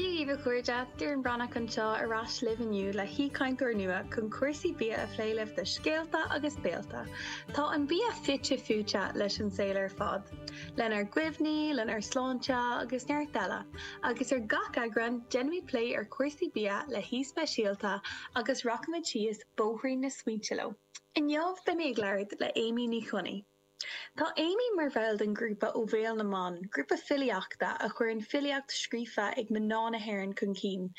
Daoibh a chairde, Doireann Breathnach anseo ar ais libh inniu le haoichainteoir nua chun cúrsaí bia a phlé libh de scéalta agus béalta. Tá an bia fite fuaite leis an saol ar fad, lenár gcuimhní, lenár sláinte agus neart eile, agus ar gach eagrán déanfaimid plé ar chúrsaí bia le haoi speisialta agus rachaimid síos bóithrín na smaointe leo. Inniu beimid ag labhairt le Amy Ní Chonaí. Tá Amy mar bhall den ghrúpa Ó Bhéal na mBan, grúpa filíochta a chuireann filíocht scríofa ag mná na hÉireann chun cinn.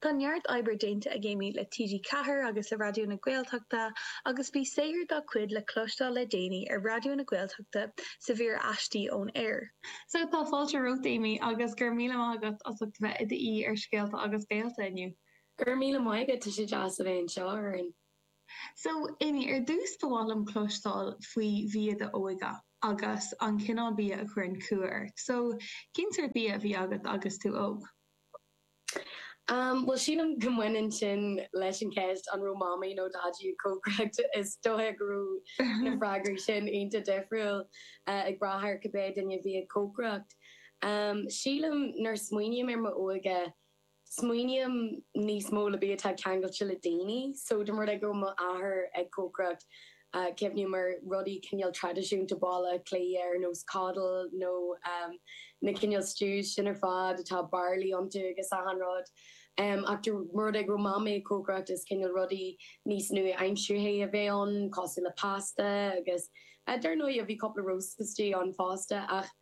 Tá neart oibre déanta ag Amy le TG Ceathair agus le Raidió na Gaeltachta agus bhí saothar dá cuid le cloisteáil le déanaí ar Raidió na Gaeltachta sa mhír Aistí ón Aer. So tá fáilte romhat Amy agus go raibh míle maith agat as ucht a bheith i d'aoi ar Scéalta agus Béalta inniu. Go raibh míle maith agat, tá sé deas a bheith anseo, a Dhoireann. So, Amy, ar dtús ba mhaith liom cloisteáil faoi bhia d'óige agus an cineál bia a chuireann cumha ort. So, cén sórt bia a bhí agat agus tú óg? Bhuel, sílim go mbaineann sin leis an cheist an raibh Mamaí nó Daidí ag cócaireacht. Is dóigh go raibh na freagraí sin iontach difriúil ag brath ar cibé duine a bhí ag cócaireacht. Sílim nuair smaoiním ar m'óige, smaoiním níos mó le bia atá ceangailte le daoine so dá mba rud é go raibh mo athair ag cócaireacht cuimhním ar rudaí cineál traidisiúnta Baile Átha Cliath ar nós coddle nó na cineál stews sin ar fad atá barley iontu agus achan rud ach dá mba rud é go raibh mamaí ag cócaireacht is cineál rudaí níos nua-aimseartha a bheadh ann cosúil le pasta agus dar ndóigh bhí cúpla roast istigh ann fosta ach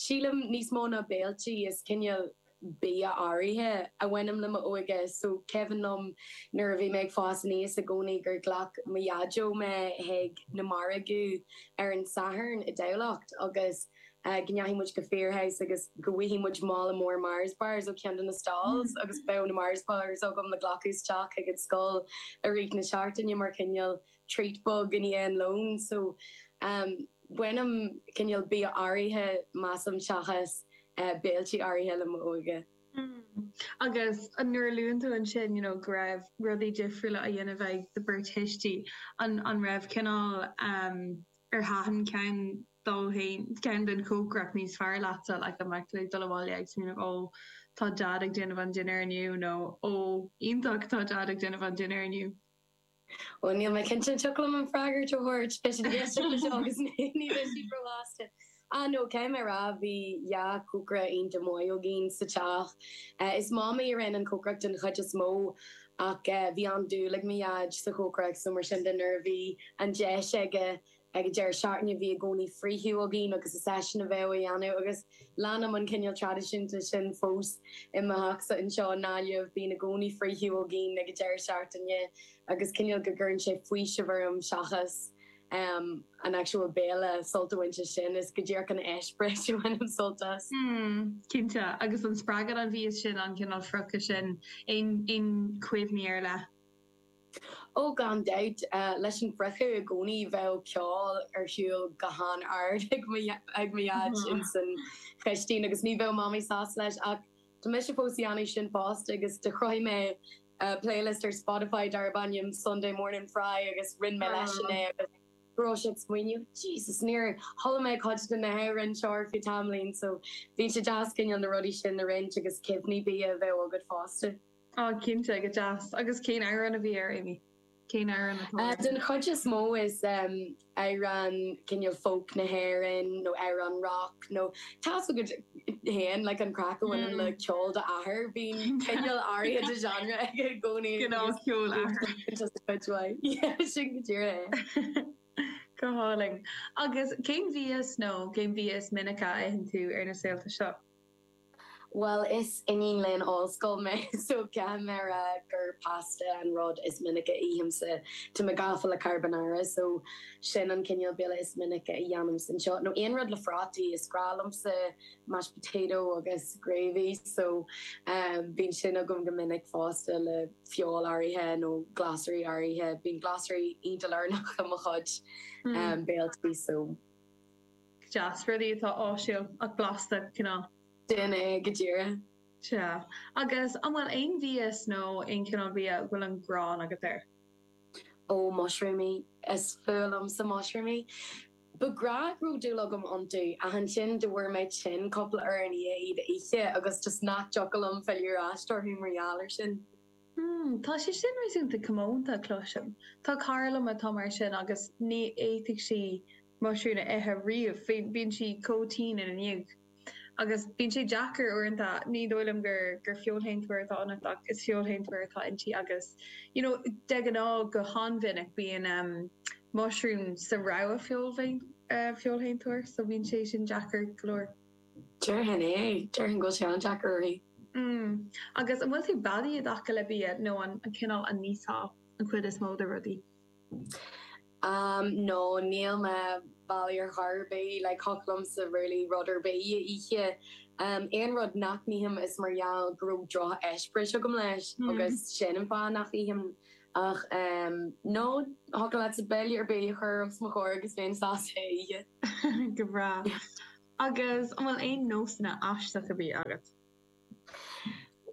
sílim níos mó ná béiltí is cineál bia áirithe a bhaineann le m'óige. So cuimhin liom nuair a bhí mé ag fás aníos i gcónaí gur ghlac mo dhaideo mé chuig na margaidh ar an Satharn i dTamhlacht agus go ndeachaigh muid go Firhouse agus go bhfaighfidh muid mála mór Mars Bars ó cheann de na stalls agus bheadh na Mars Bars agam le glacadh isteach chuig an scoil i rith na seachtaine mar chineál treat beag i ndiaidh an lón so bainim cineál bia áirithe measaim seachas béiltí áirithe le m'óige. Hmm agus nuair a luann tú ansin you know go raibh rudaí difriúla á dhéanamh ag do bheirt thuistí an an raibh cineál em ar thaitin ceann dóibh ceann den chócaireacht níos fearr leatsa like an mbeadh tú ag dul abhaile ag smaoineamh ó tá Dad ag déanamh an dinnéar inniu nó ó iontach tá Dad ag déanamh an dinnéar inniu. Bhuel, níl mé cinnte, an dtiocfaidh liom an freagairt a thabhairt beidh siad ag éisteacht leis seo agus ní bheidh siad róshásta. Ah no, caithfidh mé a rá, bhí dhá chócaire iontach maith againn sa teach. Is Mamaí a rinne an cócaireacht den chuid is mó, ach bhí an-dúil ag mo Dhaid sa chócaireacht so mar sin de nuair a bhí an deis aige Ag an deireadh seachtaine bhí i gcónaí friochadh againn agus is eisean a bheadh á dhéanamh agus leanaim an cineál traidisiúnta sin fós i mo theachsa anseo i nGaillimh. Bíonn i gcónaí friochadh againn ag an deireadh seachtaine agus cineál go gcuireann sé faoiseamh orm seachas em an actual béile sult a bhaint as sin. Is go díreach an eispéireas a bhainim sult as. Mm, cinnte. Agus an spreagann an mhias sin an cineál friochadh sin. Aon, aon chuimhní ar leith? Ó gan dabht, leis an bhfriochadh i gcónaí bheadh ceol ar shiúl go han ard ag mo dhaid ins an chistín agus ní bheadh mamaí sásta leis ach tá mise fós ag déanamh sin fosta agus do chruthaigh mé playlist ar Spotify darb ainm Sunday Morning Fry agus roinn mé leisean é agus go raibh sé ag smaoineamh Jesus níor chuala mé cuid de na hamhráin seo ar feadh tamaillín so bhí sé deas cineál na rudaí sin a roinnt agus cuimhní bia a bheith agat fosta. Ah, cinnte, go deas. Agus cén amhrán a bhí air, Amy? Cén amhrán atá air? Den chuid is mó is amhráin cineál folk na hÉireann nó amhráin rock nó tá's agat féin like an craic a bhaineann le ceol d'athair, bíonn cineál áirithe de genre aige i gcónaí. Cineál ceol athair. Just a bit why. Yeah, sin go díreach é. Go hálainn. Agus cén mhias nó cén bia is minice a itheann tú ar na saolta seo? Bhuel is iníon léinn ollscoile mé so caithfidh mé a rá gur pasta an rud is minice a ithimse. Tá mé gafa le carbonara so sin an cineál béile is minice a dhéanaimse anseo. Nó aon rud le phrátaí, is grá liomsa mashed potato agus gravy so bíonn sin agam go minic fosta le feoil áirithe nó glasraí áirithe. Bíonn glasraí iontach lárnach i mo chuid béiltí so. deas, rudaí atá áisiúil ach blasta, cineál. Sin é go díreach. Sea. Agus an bhfuil aon mhias nó aon chineál bia a bhfuil an ghráin agat air? Ó, mushroomaí. Is fuath liomsa mushroomaí. Ba ghnách go raibh dúil agam iontu, ach ansin go bhfuair mé tinn cúpla uair i ndiaidh iad a ithe agus just nach dtiocfadh liom filleadh ar ais orthu mar gheall ar sin. Hmm, tá sé sin réasúnta comónta, cloisim. Tá cara liom atá mar sin agus ní fhéadfadh sí. muisiriúin a ithe riamh. Bíonn sí chomh tinn ina ndiaidh. Agus bíonn sé deacair uaireanta, ní dóigh liom gur gur feoilséantóir atá ionat ach is feoilséantóir atá inti agus you know de ghnáth go han-mhinic bíonn ehm muisiriún sa rogha feoil feoilséantóir so bíonn sé sin deacair go leor. Déarfainn é. Déarfainn go bhfuil sé an-deacair uirthi. Mm. Agus an bhfuil tú beadaí i dtaca le bia nó an cineál a n-íosfá an chuid is mó de rudaí? Am nó níl mé beadaí ar chor ar bith, like thiocfadh liomsa really rud ar bith a ithe. Aon rud nach n-ithim is mar gheall go raibh drocheispéireas agam leis agus sin an fáth nach n-ithim. Ach em no, thiocfadh leatsa béile ar bith a chur os mo chomhair agus bhéinn sásta é a ithe. Go breá. Agus an bhfuil aon nósanna aisteacha bídh agat?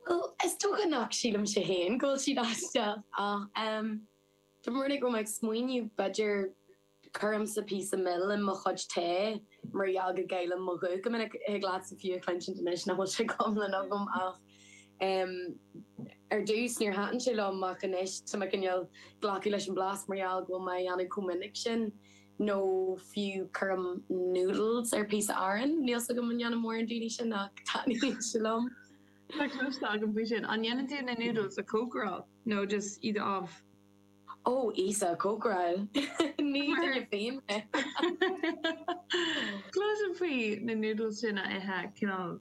Bhuel, is dócha nach sílimse fhéin go bhfuil siad aisteach ach em. Tá mé ag smaoineamh b'fhéidir cuirimse píosa mil in mo chuid tae mar gheall go gcaillim mo ghuth go minic. Thig leatsa fiú a chluinsint anois nach bhfuil sé go hiomlán agam ach em ar dtús níor thaitin sé liom ach anois tá mé i ndiaidh glacadh leis an blas mar gheall go bhfuil mé a dhéanamh chomh minic sin nó fiú cuirim noodles ar píosa aráin. Níl 's agam an ndéanann mórán daoine sin ach taitníonn sé liom. Tá cloiste agam faoi sin. An ndéanann tú na noodles a chócaráil? nó just iad amh. Ó, íosa, cócaráil! Ní duine féin mé! Cloiste faoi na noodles daoine a ithe cineál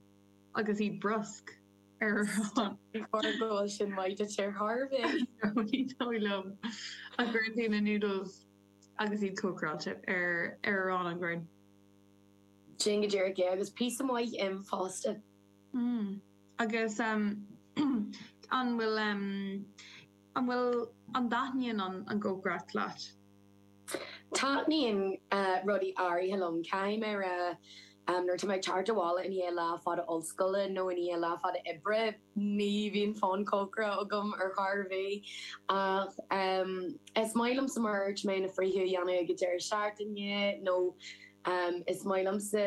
agus iad briosc ar arán. Before I go bhfuil sin maith duit ar chor bith. Ní dóigh liom. Ach cuireann tú na noodles agus iad cócaráilte ar arán an ghrinn. Sin go díreach é, agus píosa maith im fosta. Agus an bhfuil, an bhfuil, an dtaitníonn an an chócaireacht leat? Taitníonn rudaí áirithe liom. Caithfidh mé a rá nuair atá mé ag teacht abhaile i ndiaidh lá fada ollscoile nó i ndiaidh lá fada oibre ní bhíonn fonn cócaireachta agam ar chor ar bith. Ach is maith liomsa mar a dúirt mé na friochtaí a dhéanamh ag an deireadh seachtaine nó is maith liomsa,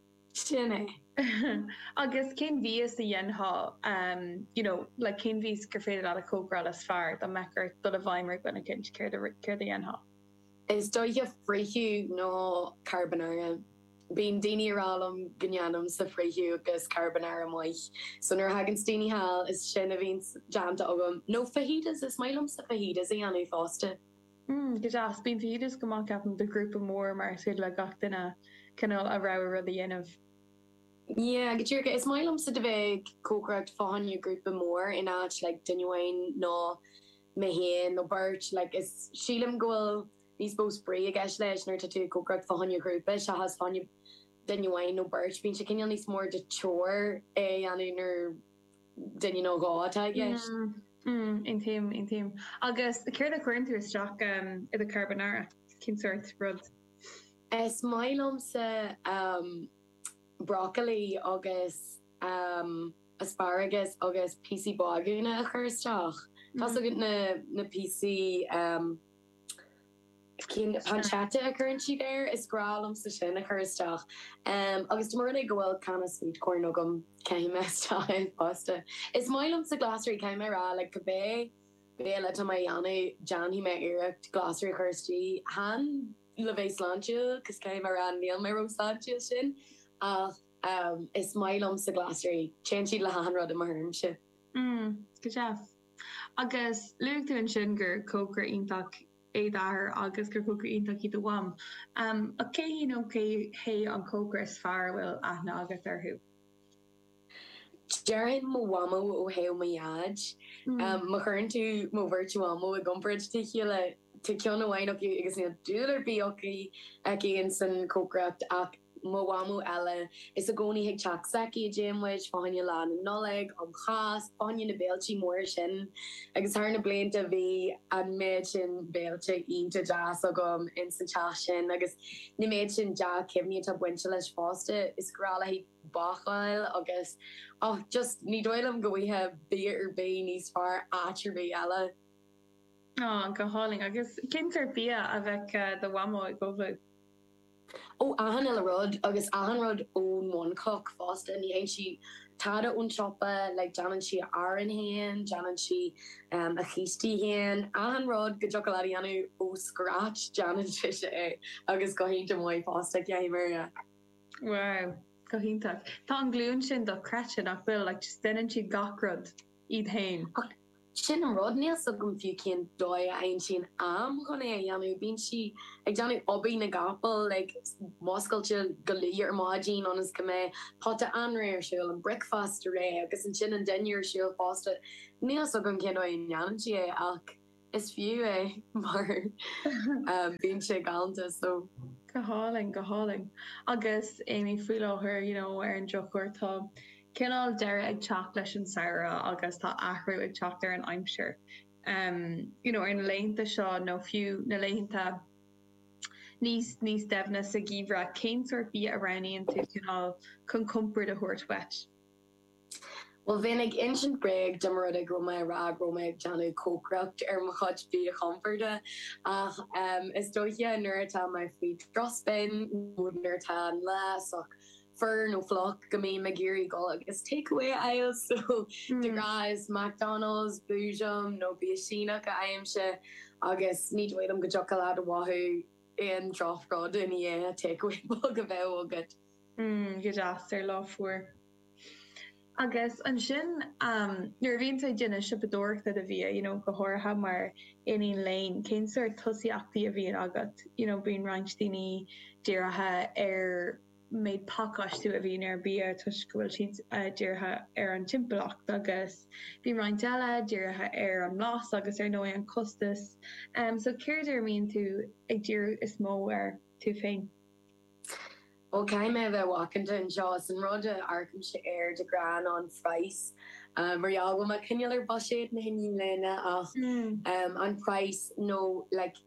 Sin é. Agus cén mhias a dhéanfá you know like cén mhias gur féidir leat a chócaráil is fearr dá mbeadh ort dul i bhfeidhm ar dhuine eicint, céard a céard a dhéanfá? Is dóiche friochadh nó carbonara. Bíonn daoine a' rá liom go ndéanaimse friochadh agus carbonara maith. So nuair a thagann daoine thall is sin a bhíonn déanta agam. Nó fajitas, is maith liomsa fajitas a dhéanamh fosta. Go deas. Bíonn fajitas go maith ceapaim do ghrúpa mór mar is féidir le gach duine cineál a rogha rud a dhéanamh. Yeah, go díreach. Is maith liomsa a bheith ag cócaireacht fá choinne grúpa mór in áit like duine amháin nó mé féin nó beirt. Like is sílim go bhfuil níos mó spraoi i gceist leis nuair atá tú ag cócaireacht fá choinne grúpa seachas fá choinne duine amháin nó beirt. Bíonn sé cineál níos mór de chore é a dhéanamh nuair. duine nó dhó atá i gceist. Mm, aontaím, aontaím. Agus céard a chuireann tú isteach i do carbonara? Cén sórt rud? Is maith liomsa em brocailí agus em asparagus agus píosaí bágúna a chur isteach. Tá 's agat na píosaí. pancetta a chuireann siad air. Is grá liomsa sin a chur isteach. Agus dá mba rud é go bhfuil canna sweet corn agam, caithfidh mé isteach i bpasta. Is maith liomsa glasraí, caithfidh mé a rá. Like, cibé béile atá mé a dhéanamh, déanfaidh mé iarracht glasraí a chur istigh. Chan le bheith sláintiúil, cos caithfidh mé a rá, níl mé ró shláintiúil sin, ach is maith liomsa glasraí. Téann siad le hachan rud i mo thuairimse. Mm, go deas. Agus luaigh tú ansin gur cócaire iontach é d'athair agus gur cócaire iontach í do mham. Ach cé hí nó cé hé an cócaire is fearr a bhfuil aithne agat orthu? Déarfainn mo mhamó ó thaobh mo dhaid. Má chuireann tú mo bheirt mhamó i gcomparáid le chéile, tá ceann amháin acu agus níl dúil ar bith aici insan chócaireacht ach mo mhamó eile, is i gcónaí ag teach s'aici a dtéann muid, fá choinne lá na Nollag, um Cháisc, fá choinne na béiltí móra sin. Agus thar na blianta bhí an méid sin béiltí iontach deas agam ins an teach sin agus an méid sin dea-chuimhní atá bainte leis fosta, is grá léithi bácáil agus och just ní dóigh liom go bhfuighfeá bia ar bith níos fearr áit ar bith eile. Go hálainn. Agus cén sórt bia a bheadh do mhamó ag ullmhú? Ó achan uile rud, agus achan rud ón mbunchloch fosta, ní fhaigheann sí tada ón tsiopa, like déanann sí a arán féin, déanann sí a chístí féin, achan rud go dtiocfadh leat a dhéanamh ó scratch déanann sise é agus go hiontach maith fosta, caithfidh mé a rá. Wow, go hiontach. Tá an ghlúin sin dochreidte nach bhfuil, like just deineann siad gach rud. iad féin. Sin an rud, níl 's agam fiú cén dóigh a aimsíonn sí an t-am chun é a dhéanamh. Bíonn sí ag déanamh obair na gcapall, like ag múscailt go luath ar maidin ionas go mbeidh pota anraith ar siúl, an bricfeasta réidh agus ansin an dinnéar ar siúl fosta. Níl 's agam cén dóigh a ndéanann sí é ach. Is fiú é mar bíonn sé galanta so. Go hálainn, go hálainn. Agus Amy faoi láthair you know ar an drochuair tá cineál deireadh ag teacht leis an samhradh agus tá athrú ag teacht ar an aimsir. em you know ar na laethanta seo nó fiú na laethanta níos níos doimhne sa gheimhreadh cén sórt bia a roghnaíonn tú cineál chun compord a thabhairt dhuit? Bhuel, bheinn ag insint bréag dá mba rud é go raibh mé ag rá go raibh mé ag déanamh cócaireacht ar mo chuid bia chompoird, ach is dóiche nuair atá mé faoi strus féin nó nuair atá an lá sách fuar nó fliuch go mbím ag iarraidh dul agus takeaway a fháil, so de ghnáth is McDonald's, Boojum nó bia Síneach a fhaighimse agus ní dóigh liom go dtiocfadh leat a mhothú aon droch rud i ndiaidh takeaway beag a bheith agat. mm go deas ar lá fuar agus ansin nuair a bhíonn tú ag déanamh siopadóireachta do bhia you know go háirithe mar iníon léinn cén sort tosaíochtaí a bhíonn agat you know bíonn roinnt daoine dírithe ar méid pacáistiú a bhíonn ar bia toisc go bhfuil siad uh, dírithe ar an timpeallacht agus bíonn roinnt eile dírithe ar an mblas agus ar ndóigh an costas um, so céard air a mbíonn tú ag díriú is mó air tú féin? Bhuel, caithfidh mé a bheith macánta anseo, is an rud a amharcaimse air de ghnáth ná an price. Mar gheall go bhfuil mé cineál ar bhuiséad na hiníne léinn ach an praghas nó like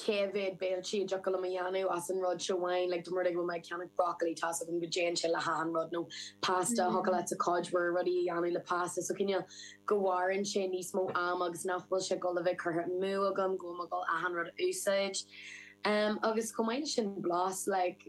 cé mhéad béiltí a thiocfadh liom a dhéanamh as an rud seo amháin, like dá mba rud é go bhfuil mé ag ceannach broccoli tá's agam go dtéann sé le hachan rud, nó pasta, thiocfadh leatsa cuid mhór rudaí a dhéanamh le pasta so cineál go mhaireann sé níos mó ama agus nach bhfuil sé ag dul a bheith curtha amú agam go bhfuil mé ag dul achan rud a úsáid. Em agus chomh maith le sin blas like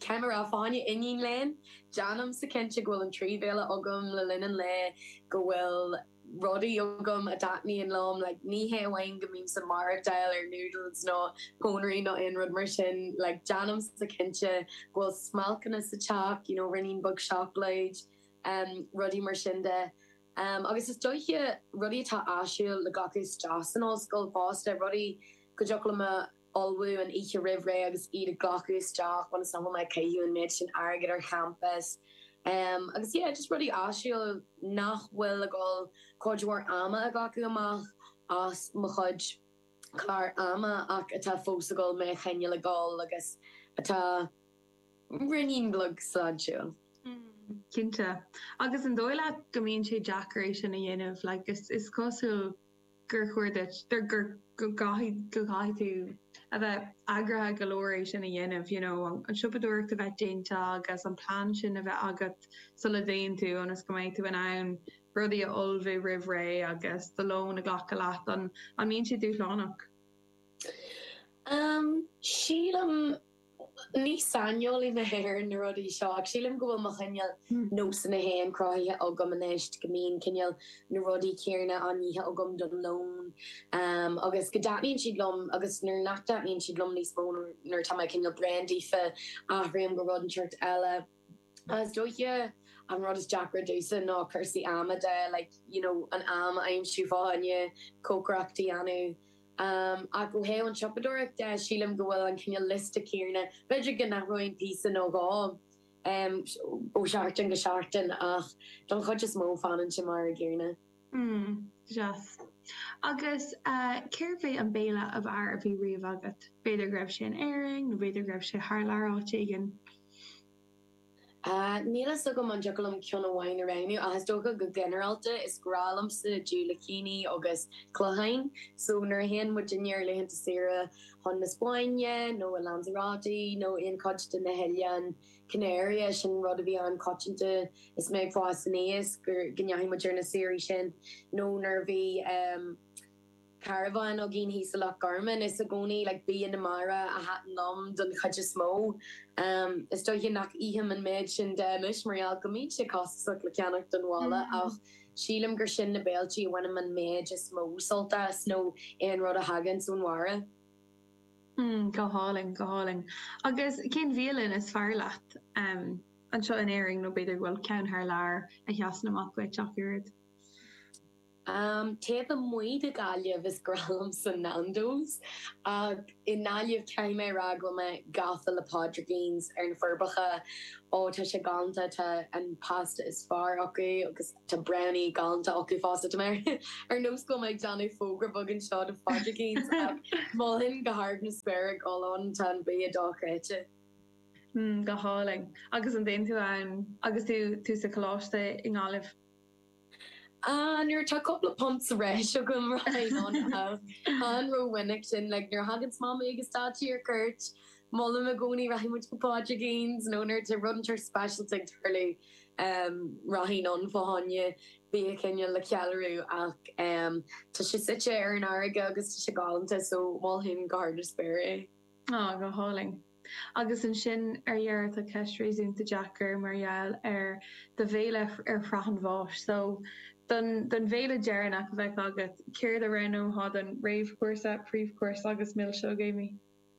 cé gur bhfuil mé i m' iníon léinn déanaimse cinnte go bhfuil an trí bhéile agam le linn an lae go bhfuil rudaí agam a dtaitníonn liom like ní hé amháin go mbímse ag maireachtáil ar noodles nó pónairí nó aon rud mar sin like déanaimse cinnte go bhfuil smailceanna sa teach you know ruainnín beag seacláide em rudaí mar sin de Um, agus is dóiche rudaí atá áisiúil le glacadh isteach san ollscoil fosta, rudaí go dtiocfadh liom a ullmhú an oíche roimh ré agus iad a ghlacadh isteach ionas nach bhfuil mé ag caitheamh an méid sin airgid ar champas. Um, agus yeah, just rudaí áisiúil nach bhfuil ag dul cuid mhór ama a ghlacadh amach as mo chuid clár ama ach atá fós ag dul mé a choinneáil ag dul agus atá. Ruainnín beag sláintiúil. Cinnte. Agus an dóigh leat go mbíonn sé deacair é sin a dhéanamh? Like, is cosúil gur chóir duit, gur, go gcaithfidh, go gcaithfidh tú a bheith eagraithe go leor é sin a dhéanamh, you know, an siopadóireacht a bheith déanta agus an plean sin a bheith agat sula dtéann tú ionas go mbeidh tú in ann rudaí a ullmhú roimh ré agus do lón a ghlacadh leat. An, an mbíonn sé dúshlánach? Sílim. Ní saineolaí mé ar na rudaí seo ach sílim go bhfuil mo chineál nósanna féin cruthaithe agam anois, go mbíonn cineál na rudaí céanna á n-ithe agam don lón agus go dtaitníonn siad liom agus nuair nach dtaitníonn siad liom níos mó nuair atá mé cineál bréan díofa athraím go rud inteacht eile. Is dóiche an rud is deacra domhsa ná cúrsaí ama de, like, you know, an am a aimsiú fá choinne cócaireacht a dhéanamh. Ach ó thaobh an tsiopadóireacht de, sílim go bhfuil an cineál liosta céanna, b'fhéidir go n-athróinn píosa nó dhó ó sheachtain go seachtain ach don chuid is mó fanann sé mar a gcéanna. Hmm, deas. Agus cérbh é an béile ab fhearr a bhí riamh agat? B'fhéidir go raibh sé in Éirinn nó b'fhéidir go raibh sé thar lear áit éigin. Níl a fhios agam an dtiocfadh liom ceann amháin a roghnú ach is dócha go ginearálta is grá liomsa diúilicíní agus cloicheáin. So nuair a théann muidinne ar laethanta saoire chun na Spáinne nó i Lanzarote nó aon chuid de na hoileáin, Canary, eh, sin rud a bhí an-choitianta is mé ag fás aníos, gur, go ndeachaigh muid ar na saoirí sin nó nuair a bhí ehm carabhán againn thíos i Loch Garman is i gcónaí like bia na mara a thaitin liom don chuid is mó. Ehm is dóiche nach ithim an méid sin de anois mar gheall go mbíonn sé costasach le ceannacht don bhaile ach sílim gur sin na béiltí a bhainim an méid is mó sult as nó aon rud a thaganns ón mhara. Hmm, go hálainn, go hálainn. Agus cén bhialann is fearr leat, em, anseo in Éirinn, nó b'fhéidir go bhfuil ceann thar lear a sheasann amach duit ach oiread? Em, taobh amuigh de Ghaillimh is grá liomsa Nando's, ach i nGaillimh caithfidh mé a rá go bhfuil mé gafa le Pádraicíns ar na Forbacha, ó tá sé galánta, tá an pasta is fearr acu agus, Tá Brownie galánta acu fosta. Tá mé ar nós go bhfuil mé ag déanamh fógra beag anseo do Phádraicíns ach mholfainn go hard na spéire ag dul ann, tá an bia dochreidte. Mm, go hálainn. Agus an dtéann tú ann agus tú tú sa choláiste i nGaillimh? Ah, nuair atá cúpla punt sa bhreis agam, rachainn ann ach chan ró-mhinic sin, like nuair a thaganns mamaí agus daidí ar cuairt, Molaim i gcónaí rachaidh muid go Pádraicíns nó nuair tá rud inteacht speisialta ag tarlú rachainn ann fá choinne bia cineál le ceiliúradh ach tá sé suite ar an fharraige agus tá sé galánta so mholfainn go hard na spéire é. Á, go hálainn. Agus ansin ar dheireadh tá ceist réasúnta deacair mar gheall ar do bhéile ar shraith an bháis so don don bhéile deireanach a bheadh agat céard a roghnófá don réamhchúrsa, príomhchúrsa agus milseog, Amy?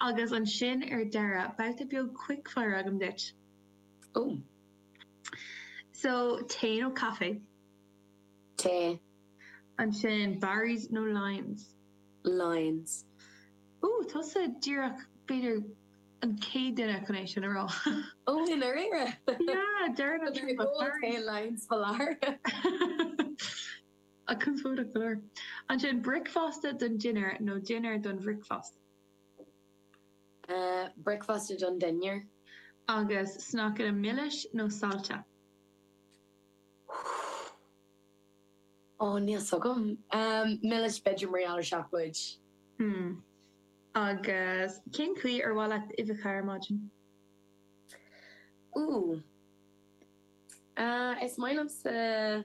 Agus ansin ar deireadh, babhta beag quickfire agam duit. Oh. So, tae nó caife? Tae. Ansin, Barry's nó Lyons? Lyons. Oh, tusa díreach b'fhéidir an chéad duine chun é sin a rá. Oh, i ndáiríre? Yeah, deireann an trua. Tá tae Lyons foláir. conspóideach go leor. Ansin, bricfeasta don dinnéar nó dinnéar don bhricfeasta? Bricfeasta don dinnéar. Agus sneaiceanna milis nó saillte? Ó, níl 's agam. Milis, b'fhéidir, mar gheall ar seacláid. Hmm. Agus cén chaoi ar mhaith leat uibheacha ar maidin? Úúú. Is maith liomsa.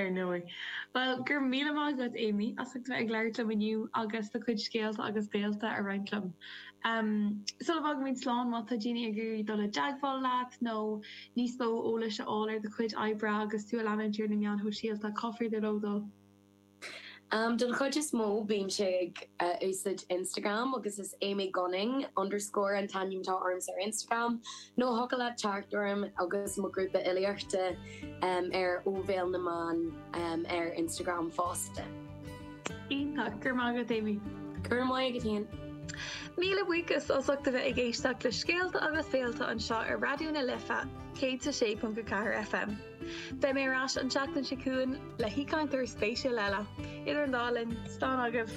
Ar ndóigh. Bhuel, go raibh míle maith agat, Amy, as ucht a bheith ag labhairt liom inniu agus do chuid scéalta agus saolta a roinnt liom. Sula bhfágaimid slán, má tá daoine ag iarraidh dul i dteagmháil leat nó níos mó eolais a fháil ar do chuid oibre agus tú a leanúint ar na meáin shóisialta, cá féidir leo dul? Don chuid is mó bímse ag úsáid Instagram agus is Amy Gunning underscore an t-ainm atá ormsa ar Instagram nó thiocfadh leat teacht orm agus mo grúpa fhilíochta ar Ó Bhéal na mBan ar Instagram fosta. Iontach, go raibh maith agat Amy. Go raibh maith agat féin. Míle buíochas as ucht a bheith ag éisteacht le Scéalta agus Saolta anseo ar Raidió na Life 106.4 FM. Beidh mé ar ais an tseachtain seo chugainn le haoichainteoir spéisiúil eile. Idir an dá linn, slán agaibh!